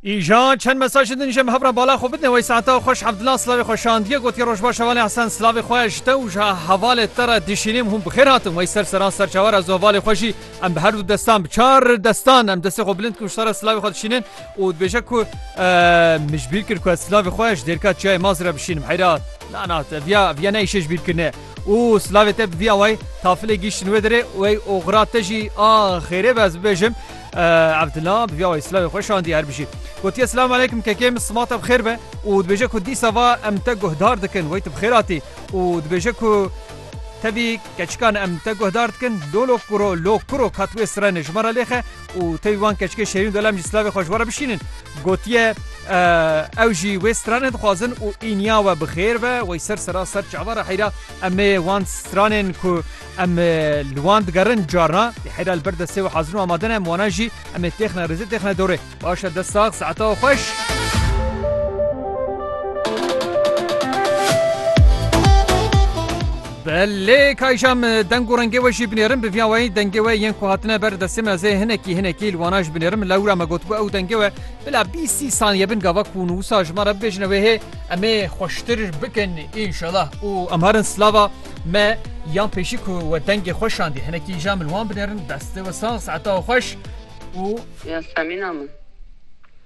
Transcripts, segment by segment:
Îjan çend mesajê din jê me hevra bala xwe bidne wey saeta xweş Abdullah slavê xwe şandiye gotiye rojbaş hevalê Hesen slavê xwe ji te û ji hevalê te re dişînêm hûn bi xêr hatin wey ser seran serçawe re zu hevalê xwe jî em bi her du destan bi çar destan em destê xwe bilind ku ji te re slavê xwe dişînin û dibêje ku min ji bîr kir ku ez slavê xwe ji dêrka çiyayê Mazî re bişînim heyra na na te viya viya ne îşê ji bîr kirine Û silavê te bi vî awayî tafilê gîştin wê derê û ey oxira te jî a xêrê be ez bibêjim Evdila bi vî awayî silavê xwe şandiye her bijî. Gotiye Silam aleykum kekê min sima te bi xêr be û dibêje ku dîsa va em te guhdar dikin wey tu bi xêr hatî û dibêje ku tevî keçikan em te guhdar dikin lolo kuro lo kuro kat wê sirene ji me re lêxe û tevî wan keçikê şêrîn dolem jî silavê xwe ji we re bişînin. Gotiye ew jî wê stranê dixwazin û îniya we bi xêr be, wey ser sera ser çava re heyra em ê wan stranên ku em li wan digerin carna ê heyra li ber destê we hazir û amade ne, em wana jî em ê têxine rêzê têxine dorê. Baş e dest sax saeta we xweş. Be lê kayja min deng û rengê we jî binêrin bi viya weyî dengê we yên ku hatine ber destê me zê hinekî hinekî li wana jî binêrim lewra me gotibû ew dengê we bila bîst sî saniye bin gava ku hûn wisa ji me re bibêjine wê hê em ê xweştir bikin înşelah û em herin slava me yan pêşî ku we dengê xwe şandî hinekî îja min wan binêrin destê we sax saeta we xweş û Ya semîna min.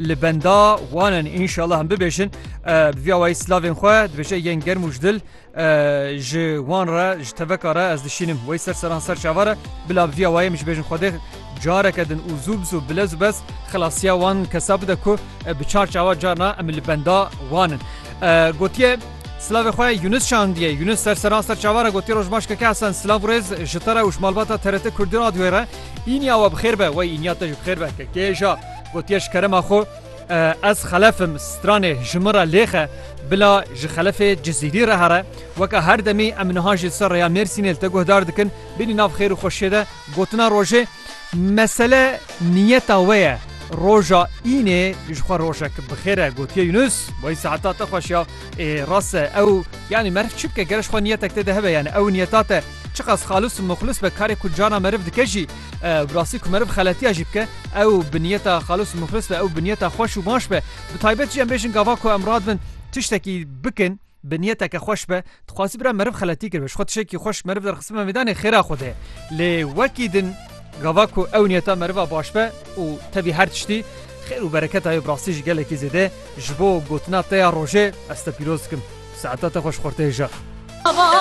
Li benda wan in înşallah em bibêjin bi vîya wayî silavên xwe dibêje yên germ û ji dil ji wan re ji teveka re ez dişînim wey ser seran ser çavan re bila bi vîya wayê min ji bêjin xwedê careke din û zû bi zû bilez û bez xilasiya wan kesa bide ku bi çar çawa carna em li benda wan in gotiye Slavê xwe Yunus şandiye Yunus ser seran ser çavan re gotiye roj baş keke Hesen silav rêz ji te re û ji malbata TRT Kurdî radyoyê re îniya we bi xêr be wey îniya te ji bi xêr be kekê ja Gotiye ji kerema xwe, Ez xelef im, stranê ji min re lêxe, bila ji xelefê Cizîrî re here. Weke her demî em niha jî li ser rêya Mêrsînê li te guhdar dikin, bînî nav xêr û xweşiyê de gotina rojê. Mesele niyeta we ye. Roja înê ji xwe rojek bi xêr e, gotiye Yunus. Wayî saeta te xweş ya. Ê rast e ew yanî meriv çi bike ger ji xwe niyetek tê de hebe yanî ew niyeta te çiqas xalis û muxlis be karê ku cana meriv dike jî Ew bi rastî ku meriv xeletiya jî bike, ew bi niyeta xalis û mixlis be, ew bi niyeta xweş û baş be, bi taybet jî em bêjin gava ku em radibin tiştekî bikin bi niyeteke xweş be, dixwazî bira meriv xeletî kiribe, ji xwe tiştekî xweş meriv derxistibime mêdanê xêra xwe de. Lê wekî din gava ku ew niyeta meriva baş be û tevî her tiştî xêr û bereketa ye bi rastî jî gelekî zêde ji bo gotina te ya rojê ez te pîroz dikim. Saeta te xweş xorteyê jar.